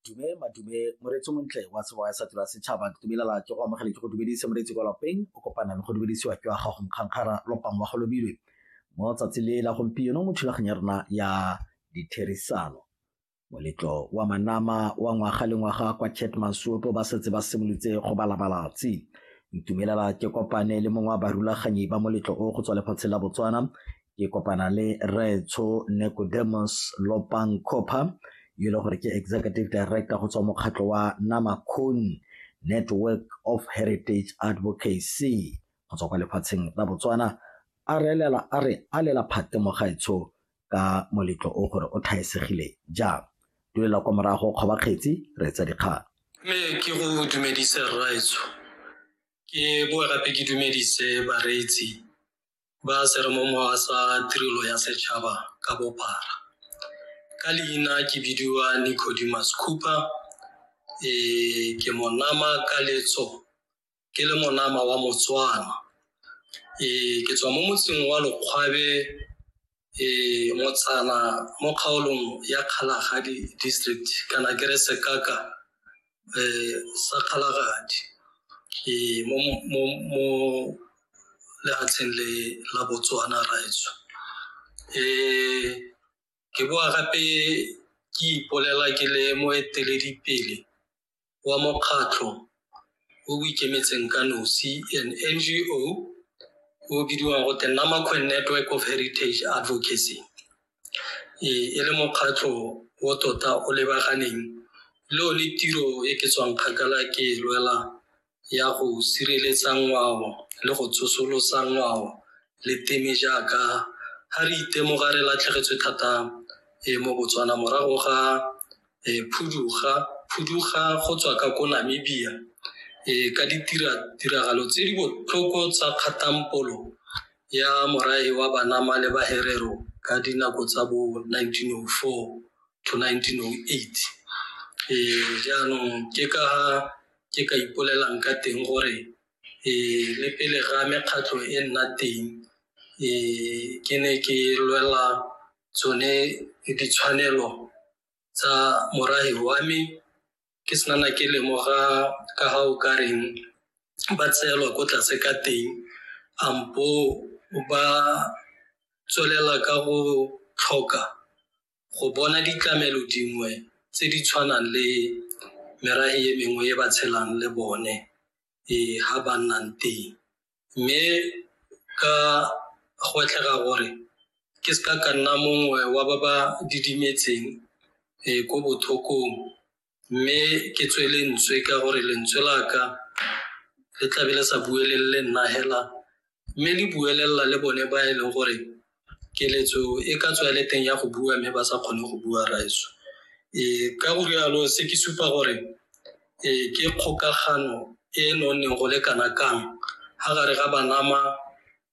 dume madume moreetsi montle wa sebo ya satura setšhaba ke dumelela ke go amogele ke go dumedise moreetsi kwa lapeng o kopana le go dumedisiwa ke wa gago mokgankgara lopang wa go lobilwe mo tsatsi le la gompieno mo thulaganyo ya rona ya ditherisano moletlo wa manama wa ngwaga le ngwaga kwa chet masuoto ba setse ba simolotse go balabalatsi ntumelela ke kopane le mongwe wa barulaganyi ba moletlo o go tswa lefatshe la botswana ke kopana le rraetsho Nicodemus Lopang Copper yo e leng gore ke executive director go tswa mokgatlho wa Namakon Network of Heritage Advocacy go tswa kwa lefatsheng la Botswana a re elela a re a lela phate mogaetsho ka moletlo o gore o thaesegile jang dulela kwa morago kgoba kgetsi re etsa dikgang me ke go dumedise rraetsho ke boa gape ke dumedise bareetsi ba seremomowa sa tirelo ya setšhaba ka bophara ka leina ke bidiwa nicodimus cooper e ke monama ka letso ke le monama wa motswana e ke tswa mo motseng wa lokgwabe e motsana mo kgaolong ya kgalagadi district kana ke re sekaka um sa kgalagadi e mo lefatsheng le la botswana raetso um ke boa gape ke ipolela ke le moeteledipele wa mokgatlho o o ikemetseng ka nosi an NGO o bidiwang go te Namakwe Network of Heritage Advocacy e e le mokgatlho o tota o lebaganeng le one tiro e ke tswang kgakala ke e lwela ya go sireletsa ngwao le go tsosolosa ngwao le teme jaaka ga re itemoga re latlhegetswe thata e mo Botswana morago ga e phuduga phuduga go tswa ka ko Namibia e ka ditira tiragalo tse di botlhoko tsa kgatampolo ya morae wa banama le baherero ka dinako tsa bo 1904 to 1908 e jaanong ke ka ke ka ipolelang ka teng gore le pele ga mekgatlho e nna teng ke ne ke lwela tsone ditshwanelo tsa morafe wa me ke se nana ke lemoga ka ga o ka reng ba tseelwa ko tlase ka teng kampo ba tswelela ka go tlhoka go bona ditlamelo dingwe tse di tshwanang le merafe e mengwe e ba tshelang le bone e ha ba nnang teng mme ka go tlhega gore ke se ka ka nna mongwe wa ba ba didimetseng e ko bothokong mme ke tswe lentswe ka gore lentswe la ka le tlabe le sa buelelele nna hela mme le buelelela le bone ba e leng gore keletso e ka tswa le teng ya go bua mme ba sa kgone go bua raeso e ka go rialo se ke supa gore e ke kgokagano e e nonneng go le kana kang ga gare ga banama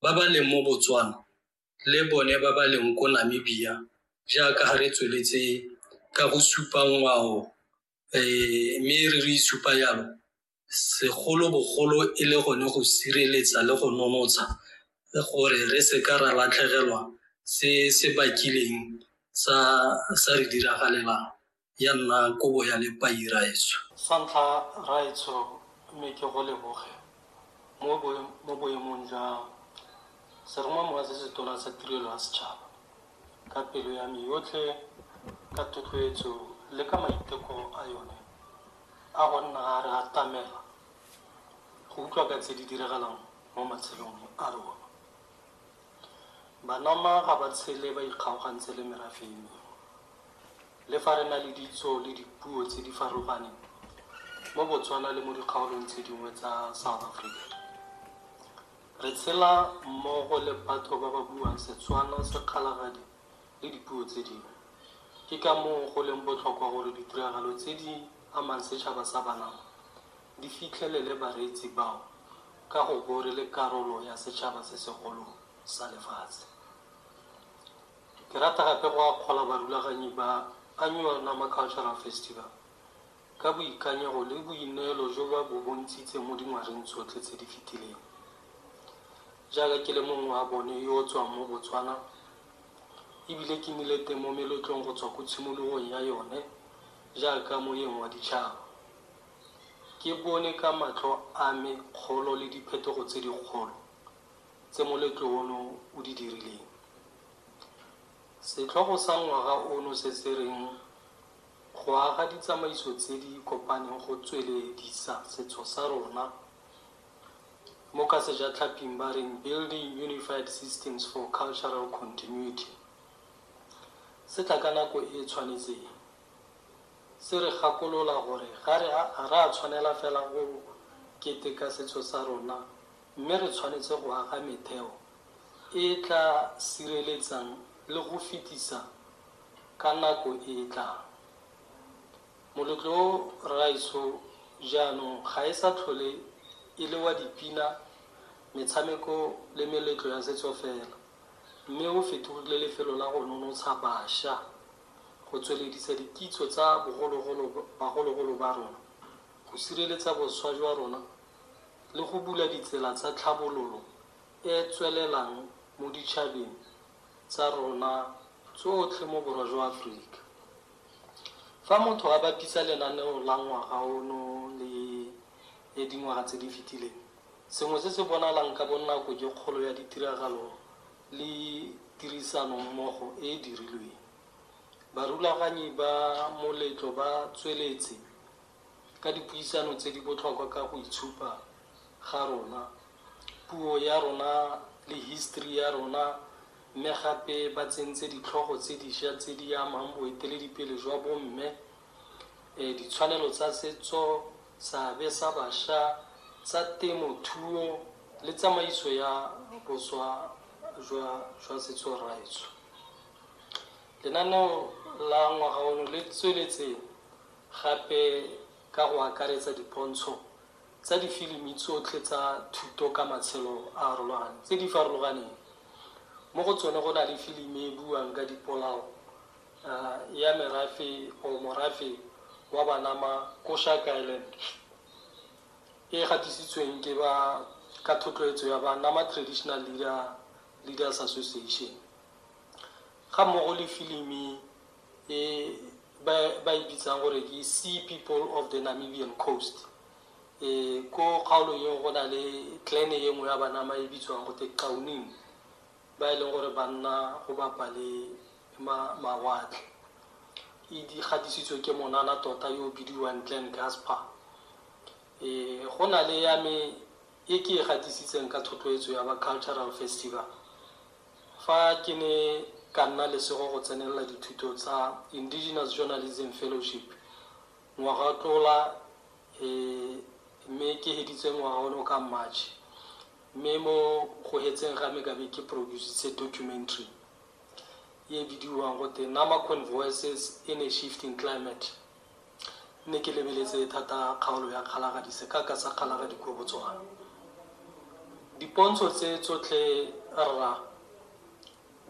ba ba leng mo botswana le bone ba ba leng ko Namibia jaaka ga re tsweletse ka go supa ngwao um mme re re isupa yalo segolobogolo e le gone go sireletsa le go nonotsha gore re se ka ra latlhegelwa se se bakileng sa re diragalelang. ya nna kobo ya lepai raetsho. Sa ntlha raetsho mme ke go leboge mo mo boemong jwa Seromamowa se Setona sa Tirelo ya Setšhaba ka pelo ya me yotlhe ka thotloetso le ka maiteko a yone a go nna a re atamela go utlwa ka tse di diragalang mo matshelong a rona. Banoma ga ba tshele ba ikgaogantse le merafe e mengwe. Le fa re na le ditso le dipuo tse di farologaneng mo Botswana le mo dikgaolong tse dingwe tsa South Africa, re tshela mmogo le batho ba ba buang Setswana, Sekgalagadi le dipuo tse dingwe. Ke ka moo go leng botlhokwa gore ditiragalo tse di amang setšhaba sa Banama di fitlhelele bareetsi bao ka go bo re le karolo ya setšhaba se segolo sa lefatshe. Ke rata gape go akgola barulaganyi ba Annual Nama Cultural Festival ka boikanyego le boineelo jo ba bo bontshitseng mo dingwageng tsotlhe tse di fetileng. Jaaka ke le mongwe wa bone yo o tswang mo Botswana e bile ke nnile teng mo meletlong go tswa ko tshimologong ya yone jaaka moeng wa ditšhaba, Ke bone ka matlho a me kgolo le diphetogo tse dikgolo tse moletlo ono o di dirileng. Setlhogo sa ngwaga ono se se reng Go Aga Ditsamaiso Tse di Kopaneng Go Tsweledisa Setso sa Rona, mo ka Sejatlhaping ba reng Building Unified Systems for Cultural Continuity, se tla ka nako e e tshwanetseng. Se re gakolola gore ga re a a re a tshwanela fela go keteka setso sa rona mme re tshwanetse go aga metheo e e tla sireletsang le go fetisa ka nako e e tlang. Moletlo o Rraetsho jaanong ga e sa tlhole e le wa dipina, metshameko le meletlo ya setso fela mme o fetogile lefelo la go nonotsha basha go tsweledisa dikitso tsa bogologolo bagologolo ba rona, go sireletsa boswa jwa rona le go bula ditsela tsa tlhabololo e e tswelelang mo ditšhabeng tsa rona tsotlhe mo Borwa jwa Aforika. Fa motho a bapisa lenaneo la ngwaga ono le le dingwaga tse di fetileng, sengwe se se bonalang ka bonako ke kgolo ya ditiragalo le tirisanommogo e e dirilweng. Barulaganyi ba moletlo ba tsweletse ka dipuisano tse di botlhokwa ka go itshupa ga rona, puo ya rona le history ya rona mme gape ba tsentse ditlhogo tse disha tse di amang boeteledipele jwa bomme, ditshwanelo tsa setso, seabe sa bašwa, tsa temothuo le tsamaiso ya boswa jwa setso raetsho. Lenaneo la ngwaga ono le tsweletse gape ka go akaretsa dipontsho tsa difilimi tsotlhe tsa thuto ka matshelo a arologaneng tse di farologaneng. Mo go tsone go na le filimi e buang ka dipolao, ya merafe or morafe wa Banama ko Shark Island e gatisitsweng ke ba ka thotloetso ya Banama Traditional Leader Leaders Association ga mmogo le filimi e ba e bitsang gore ke Sea People of the Namibian Coast e ko kgaolo eo go na le clan e nngwe ya Banama e bitswang go te Qauning ba e leng gore ba nna go bapa le mawatle e di gadisitswe ke monana tota yo o bidiwang Glenn Gasper. E, go na le ya me e ke e gadisitseng ka thotloetso ya ba Cultural Festival fa ke ne ka nna lesego go tsenelela dithuto tsa Indigenous Journalism Fellowship ngwaga o tlola e, mme ke heditse ngwaga ono ka March Mme mo go hetseng ga me ka be ke produsitse documentary e e bidiwang gote Namaquan Voices in a Shifting Climate. Nne ke lebeletse thata kgaolo ya Kgalagadi, sekaka sa Kgalagadi ko Botswana. Dipontsho tse tsotlhe rra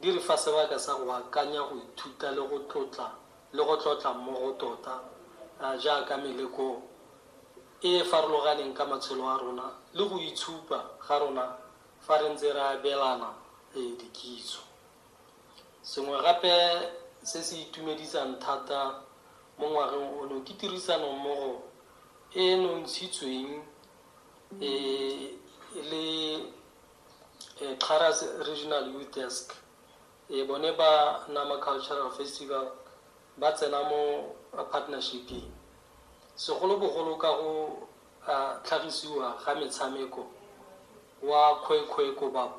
di re fa sebaka sa go akanya, go ithuta le go tlotla le go tlotla mmogo tota jaaka meleko e e farologaneng ka matshelo a rona le go itshupa ga rona fa re ntse re abelana dikitso. Sengwe gape se se itumedisang thata mo ngwageng ono ke tirisanommogo e e nontshitsweng le Xarras Regional Youth Desk. Ee, bone ba Nama Cultural Festival ba tsena mo partnership-ing, segolobogolo ka go tlhagisiwa ga metshameko wa Khoi Khoi Kobab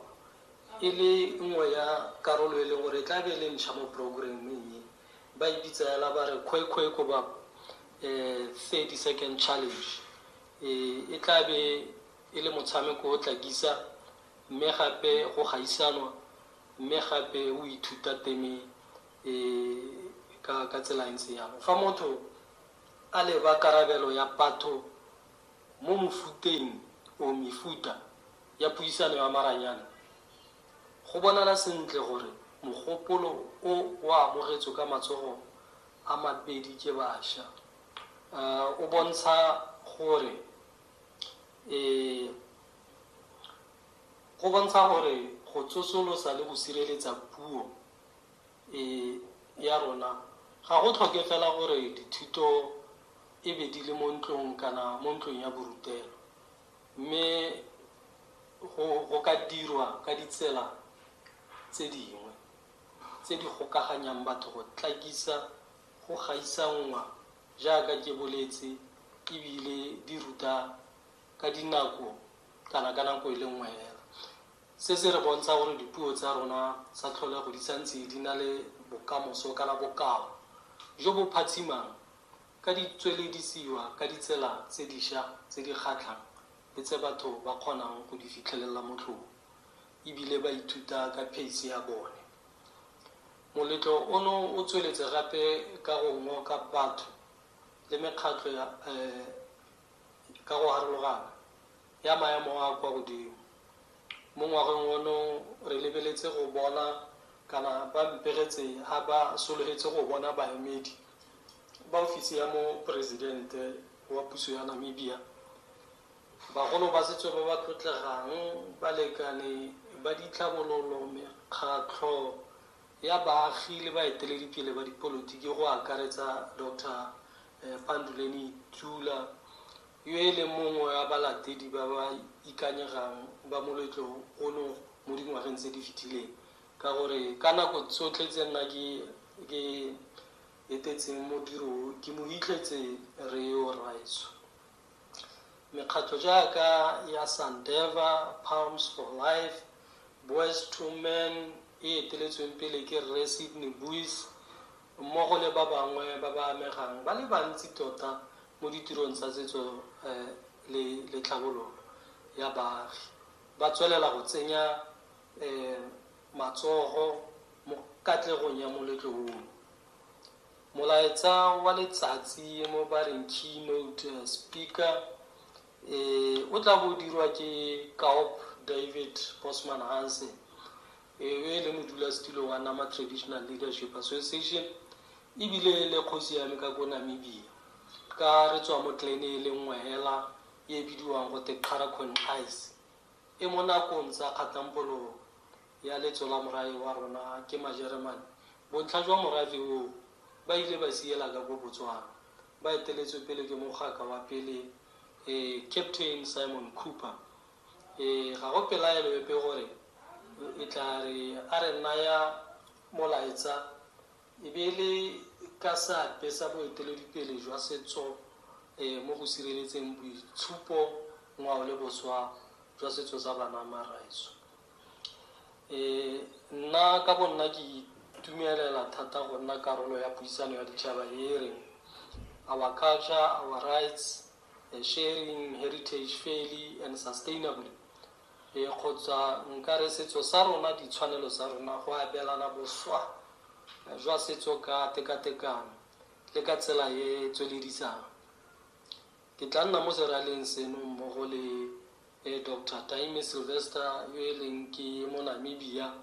e le nngwe ya karolo e leng gore e tla be e le ntšha mo programming e. Ba e bitsa fela ba re Khoi Khoi Kobab 30 Second Challenge. E tla be e le motshameko o tla kisa mme gape go gaisanwa Mme gape o ithuta teme e ka tsela e ntse jang? Fa motho a leba karabelo ya patho mo mofuteng or mefuta ya puisano ya maranyane, go bonala sentle gore mogopolo o o amogetswe ka matsogo a mabedi ke basha. O bontsha gore e. Go bontsha gore go tsosolosa le go sireletsa puo e ya rona ga go tlhoke fela gore dithuto e be di le mo ntlong kana mo ntlong ya borutelo, mme go go ka dirwa ka ditsela tse dingwe tse di gokaganyang batho go tlakisa go gaisanngwa jaaka ke boletse e bile di ruta ka dinako kana ka nako e le nngwe hela. Se se re bontsha gore dipuo tsa rona tsa tlholego di santse di na le bokamoso kana bokao jo bo phatshimang ka di tsweledisiwa ka ditsela tse disha tse di kgatlhang le tse batho ba kgonang go di fitlhelelela motlhofo e bile ba ithuta ka pheise ya bone. Moletlo ono o tsweletse gape ka go ngoka batho le mekgatlho ya Ka go harologana ya maemo a a kwa godimo, mo ngwageng ono re lebeletse go bona kana ba mpegetse a ba sologetse go bona baemedi ba ofisi ya Moporesidente wa puso ya Namibia, bagolo ba setso ba ba tlotlegang, balekane ba ditlhabololo, mekgatlho ya baagi le baeteledipele ba dipolotiki go akaretsa Doctor Eh, Panduleni Tula, yo e leng mongwe wa balatedi ba ba ikanyegang ba moletlo ono mo dingwageng tse di fetileng ka gore ka nako tsotlhe tse nna ke ke etetseng modiro o, ke mo hitlhetse Reo Raiso. Mekgatlho jaaka ya Sandeva, Palms for Life, Boys to Men e eteletsweng pele ke Rre Sydney Buys, mmogo le ba bangwe ba ba amegang ba le bantsi tota mo ditirong tsa setso le tlhabololo ya baagi, ba tswelela go tsenya matsogo mo katlegong ya moletlo ono. Molaetsa wa letsatsi mo ba reng Keynote Speaker e, o tla bo o dirwa ke Kaup David Bosman Hansen, Ewe e le modulasetulo wa Nama Traditional Leadership Association e bile e le kgosi ya me ka ko Namibia ka re tswa mo clan-e e le nngwe hela e bidiwang go te Qharakhonkgais e mo nakong tsa kgatampololo ya letso la morae wa rona ke Majeremane bontlha jwa morafe oo ba ile ba siela ka ko Botswana ba eteletswe pele ke mogaka wa pele eh Captain Simon Cooper Ee, ga go pelaelo epe gore o e tla re a re naya molaetsa e be e le ka seabe sa boeteledipele jwa setso mo go sireletseng boitshupo, ngwao le boswa jwa setso sa banamaraetsho. Ee, nna ka bonna ke itumelela thata go nna karolo ya puisano ya ditšhaba e e reng Our Culture, Our Rights. Sharing Heritage Fairly and Sustainably, e kgotsa nka re setso sa rona, ditshwanelo tsa rona, go abelana boswa jwa setso ka tekatekano le ka tsela e e tsweledisang. Ke tla nna mo seraleng seno mmogo le Doctor Taime Sylvester yo e leng ke mo Namibia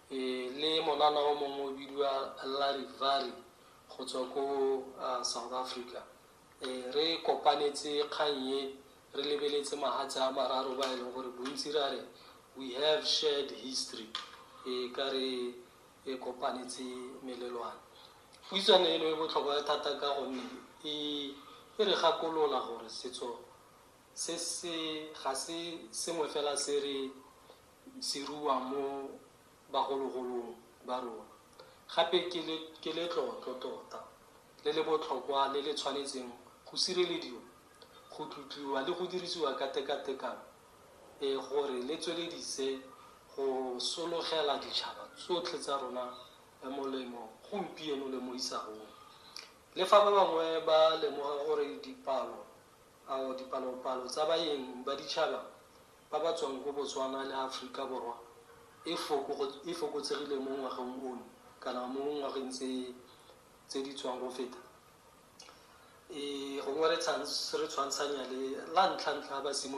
le monana o mongwe o bidiwa Larry Vary go tswa ko South Africa. Ee, re kopanetse kgang e, re lebeletse mahatshe a mararo ba e leng gore bontsi ra re we have shared history, e ka re e kopanetse melelwane. Puisano eno e botlhokwa thata ka gonne e e re gakolola gore setso se se ga se sengwe fela se re se ruang mo bagologolong ba rona. Gape ke le, ke letlotlo tota, le le botlhokwa le le tshwanetseng go sirelediwa, go tlotliwa le go dirisiwa ka tekatekano, e, gore le tsweledise go sologela ditšhaba tsotlhe tsa rona molemo gompieno le mo isagong. Le fa ba bangwe ba lemoga gore dipalo, ao, dipalopalo tsa baeng ba ditšhaba ba ba tswang ko Botswana le Aforika Borwa e e fokotsegile mo ngwageng ono kana mo ngwageng tse tse di tswang go feta. E gongwe re re tshwantshanya le la ntlha ntlha ba simolola.